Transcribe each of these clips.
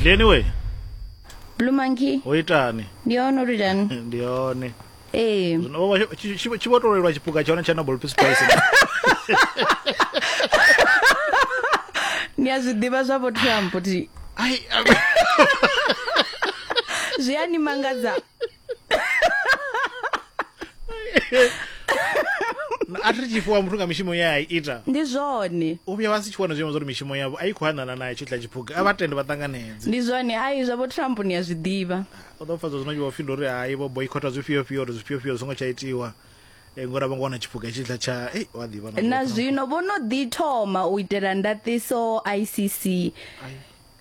glen we blue monkey o itani ndi ono uri tani ndi yone ee zwino vho vha tshi- tshi- tshi vho tolelwa tshipuka tsha hone tsha nobel peace prize ndi a zwi ḓivha zwa vho trump ti ai zwi a ni mangadza a thi ri tshi fhiwa muthu nga mishumo ye a i ita ndi zwone u vhuya vha si tshi wana zwiimo zwa uri mishumo yavho a i khou hanana nayo tshitla tshiphuga a vha tende vha ṱanganedze ndi zwone ai zwa vho trump ni a zwi ḓivha o ḓo pfadza zwino vho fhinda uri hai vho boycota zwifhio fhio uri zwifhio fhio zwi ngo tsha itiwa Eh, ngori a vho ngo wana tshiphuga tshitla tsha ei wa ḓivha na zwino vho no ḓi thoma u itela ndaṱiso icc Ai.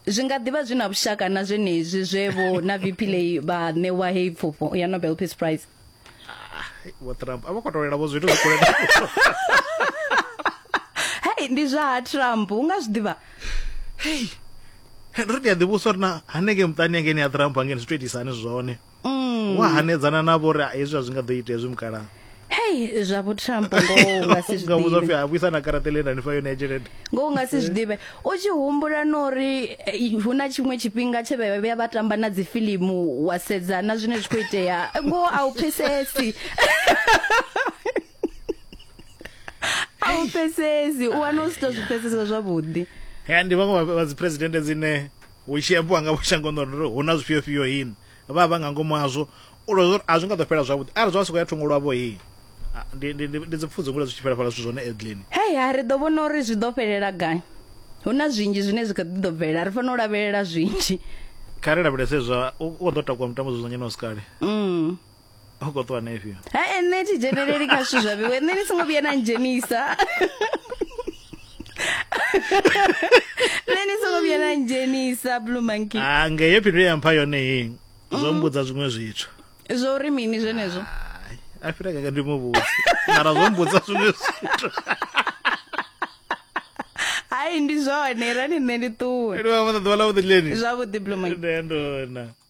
Zwi nga ḓivha zwi na vhushaka na zwenezwi zwe vho na VP Lay vha ṋewa heyi pfufho ya Nobel Peace Prize. Vho Trump a vho khou tolela vho zwithu zwi kule na Hey ndi zwa ha Trump u nga zwi ḓivha. Hey. Ri ndi a ḓivhusa uri na hanengei muṱani hangei ni a Trump hangei zwi to itisa hani zwone. mm. wa hanedzana navho uri hezwi a zwi nga ḓo ita hezwi mukalaha hei zwa vhutrambo ngoho u nga si zwiḓivhe a vhuisa na karata ḽe nda ni fa yone ya tshelede ngoho u nga si zwiḓivhe u tshi humbula na uri eh, hu na tshiṅwe tshifhinga tshe vha vhuya vha tamba na dzifilimu wa sedza na zwine zwi khou itea ngoho a u pfesesi a u pfesesi u wana u si to zwi pfesesa zwavhuḓi ya ndi vhaṅwe vha dzi president dzine Hu tshi ambiwa nga vhushango nṋe uri hu na zwifhio fhio hii vha vha vha nga ngomu hazwo u lozwa uri a zwi nga ḓo fhela zwavhuḓi arali zwa nga sokou ya thungo lwavho hii ndi ndi ndi ndi dzi pfudzi ngule zwi tshi fhela fhala zwithu zwone Edlin. Hei ha ri ḓo vhona uri zwi ḓo fhelela gai. Hu na zwinzhi zwine zwi kha ḓi ḓo bvelela ri fanela u lavhelela zwinzhi. Kha ri lavhelese zwa u kho ḓo takuwa mutambo dzudzanyeni wa si kale. hu khou ṱuwa na ifhio ha nṋe thi dzheneleli kha zwithu zwa vhewe nṋe ni songo vhuya na ndzhenisa nṋe ni songo vhuya na ndzhenisa blue monkey ah nge yo phindulo ya mpha yone hei zwo mm. mbudza zwiṅwe zwithu zwo uri mini zwenezwo a fhira kaka ndi mu vhudzi mara zwo mbudza zwiṅwe zwithu hayi ndi zwone rani nṋe ndi ṱuwe ndi vha vha ḓuvha ḽa vhuḓi leni zwavhuḓi blue monkey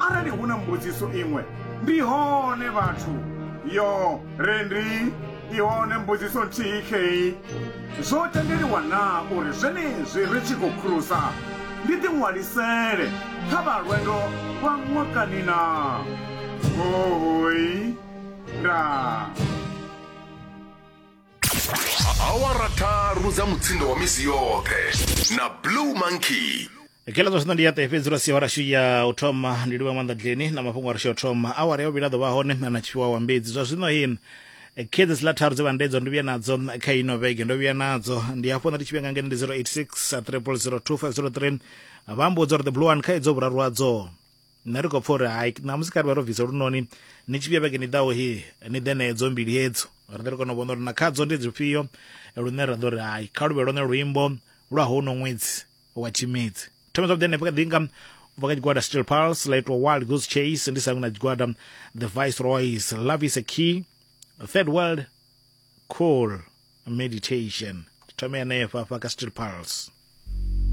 Arali hu na mbudziso iṅwe, ndi hone vhathu. Yo re ndi i hone mbudziso nthihi khei. Zwo tendeliwa na uri zwenezwi ri tshi khou khurusa ndi ḓi ṅwalisele kha vha lwendo lwa ṅwakani na? Hoi. Ndaa. awara tharu dza mutsindo wa misi yoṱhe na blue monkey kela zwa zwino ndi ya ṱe fhedzi lwa sia wa rashu ya u thoma ndi livha maanḓa dleni na mafhungo a rashu ya u thoma awara ya vhuvhili a ḓo vha hone na tshifhiwa wa mbedzi zwa zwino hi khedzo dziḽa tharu dze vha ndedzo ndo vhuya nadzo kha ino vhege ndo vhuya nadzo ndi hafho nda ndi tshi vhuya nga ngeno ndi 086 3002503 vha mbo uri the blue one kha idzo vhuraru hadzo nṋe ri khou pfa uri hai ṋamusi kha ri vha ro bvisa lunoni ni tshi vhuya vhege ni ḓaho hi ni ḓe nedzo mbili hedzo ri ḓe ri kona u vhona uri na khadzo ndi dzifhio lune ra ḓo ri hai kha luvhe lone luimbo lwa hono ṅwedzi wa tshimedzi thome zwavhuḓi hanefho kha ḓi nga ubva kha tshigwada steel pulse la itwa wild goose chase ndi sangu na tshigwada the viceroys love is a key third world cool meditation thome hanefha fha ka steel pulse